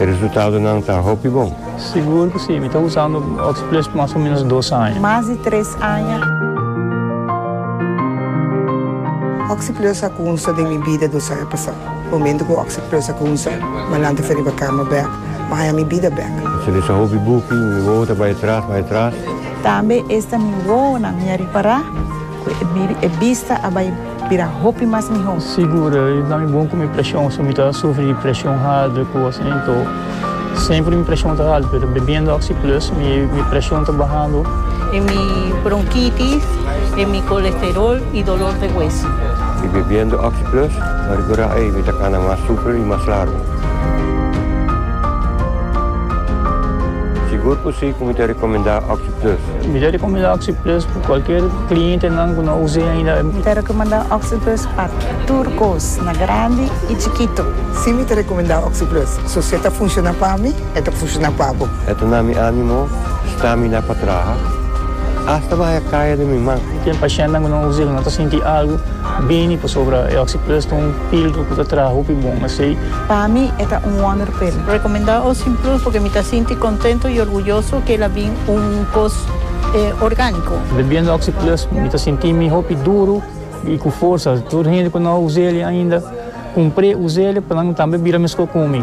E resultadonan ta hopi bon. Sigur cu si. Mi ta usando Oxyplus mas o menos dos aña. Mas di tres aña. Oxyplus a cunsa den mi bida dos aña pasa. Momento cu Oxyplus a cunsa, Malan ta fe riba cama bek, ma aña mi bida bek. Mi ta lesa hopi buki, mi wowo ta bay atras, bay atras. Tambe esta mi wowonan mi a ripara cu e bista a bay. Bira hopi mas miho. Sigur e ta mi bon ku mi preshon so mi ta sufri di preshon haltu ku asin anto semper mi preshon ta haltu pero bebiendo oxi plus mi preshon ta bahando. E mi bronkitis e mi kolesterol i dolor de hueso. Mi bebiendo oxi plus ta rigora ei mi ta kana mas super i mas largu. Sigur ku si ku mi ta rekomendá oxi. Plus. Mi ta rekomendá Oxi Plus pa kualker klientenan ku no a us'é ainda. Mi ta rekomendá Oxi Plus pa tur kos, na grandi i chikitu. Sí, mi ta rekomendá Oxi Plus. So si e ta funshoná pa mi, e ta funshoná pa bo. E ta na mi ánimo stramina pa traha, asta bahaya kaya den mi man. Ten pashentenan ku no a us'é ku no ta sinti algu bini pasobra e Oxi Plus ta un. Pildo ku ta traha hopi bon asei. Pa mi e ta un wonderpil. Rekomendá Ocean Plus porque mi ta sinti kontento i orguyoso ke el a bin un kos orgániko. Bebiendo Oxi Plus mi ta sinti mi hopi duru i ku forsa. Tur hende ku no a usa el ainda, kumpr'é, usa el pa nan tambe bira meskó ku mi.